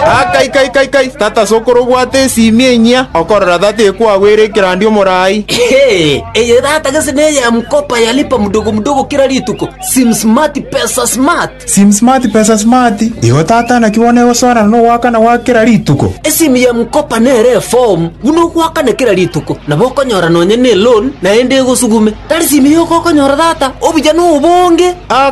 Ah, kai, kai, kai, kai! Tata sokoro obwate esiimi enyia, okorora tata ekwagwera ekerandi omorai. Hee, eye tata gese neye ya mkopa ya lipa mdogo mdogo kila rituko, sim smart pesa smart. Sim smart pesa smart. Igo tata naki bono egosoanana na ogoakana gwa kera rituko. Esimu ya mkopa nere eform buna ogoakana kera rituko, nabo okonyora nonya ne loan naende egosugume. Tari simu yoka okonyora tata, obuya nobonge. Ah,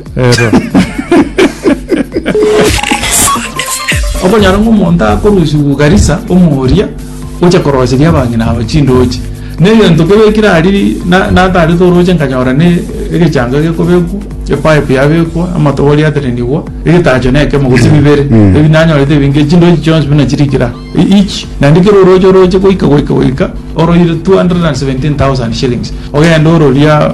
Ero. Okonyora ng'a omonto akorusiwa Garissa omoria gocha koroseria abang'ina aba chindoche. Na egento kebekire aria na- natarete oroche nkanyora ne egechanga gekobekwa, epipe yabekwa, amatobori aterenigwa, egetacho na ekemo gose bibere. Mm. Ebi nanyorete ebinge chindoche chionsi buna chiri kira e- each. Naende kera oroche oroche goika goika goika oroire 217,000 shillings. Ogenda ororia